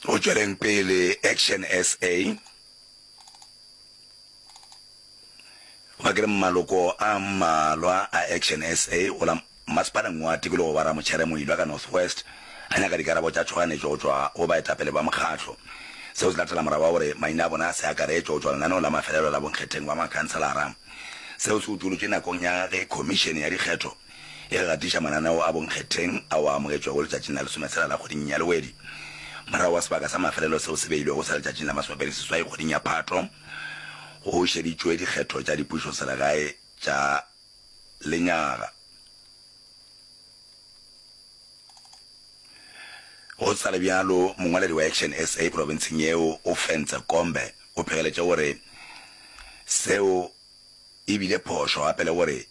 go tšweleng pele action sa ba ke re maloko a mmalwa a action sa go la masepaleng wa tikologo wa ramotšhere moilwa ka north west a nyaka dikarabo tša tšhoganetšo go tšwa go baetapele ba mokgatlo seo se latela morago wa gore maina a bona a se akaretšo go tšwa lenaneo la mafelelo la bonkgetheng ba makhanselara seo se utolotšwe nakong ya ge khomišene ya dikgetho e re gatiša mananeo a bonkgetheng ao a amogetšwego letšatšing la lesometsela la kgweding ya Lewedi, morago ga sebaka sa mafelelo seo se beilwego sa letšatšing la masomepedi seswai kgweding ya Phatho, go šeditšwe dikgetho tša dipušoselegae tša lenyaga. Go sa le bjalo, mongwaledi wa Action SA profenseng yeo, Ofentse Kombe, o phegeletše gore seo e bile phošo gape le gore,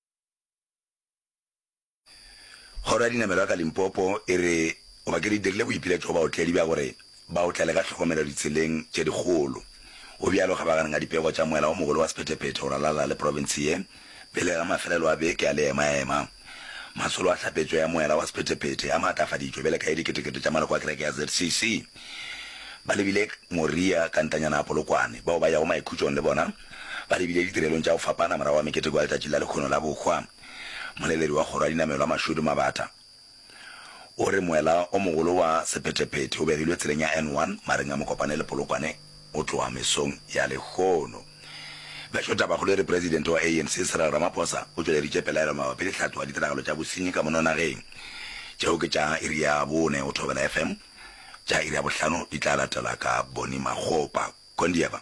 Kgoro ya Dinamelo ya ka Limpopo e re go ba ke di dirile boipiletšo go baotledi bja gore ba otlele ka tlhokomelo ditseleng tše dikgolo. Go bjalo kgabaganeng a dipego tša moela o mogolo wa sephetephete go ralala le profense ye pele ga mafelelo a beke a leemaema. Masolo a hlapetšo ya moela wa sephetephete a maatlafaditšwe bjale ka e diketekete tša maloko a kereke ya ZCC ba lebile Moria ka ntanyana a Polokwane bao ba yago Maikhutšong le bona Ba lebile ditirelong tša go fapana morago ga meketeko ya Letšatši la Lekgono la Bohwa. Moleledi wa Kgoro ya Dinamelwa Mashudu Mabata o re moela o mogolo wa sephetephete o begilwe tseleng ya N1 mareng a Mokopane le Polokwane go tloga mesong ya lehono. Bešo Tabakgolo e re Presidente wa ANC Cyril Ramaphosa o tšweleditše pelaelo mabapi le tlhatlo ya ditiragalo tša bosenyi ka mono nageng tšeo ke tša iri ya bone go Thobela FM. tša iri ya bohlano di tla latela ka Bonnie Makgopa. Kondieva.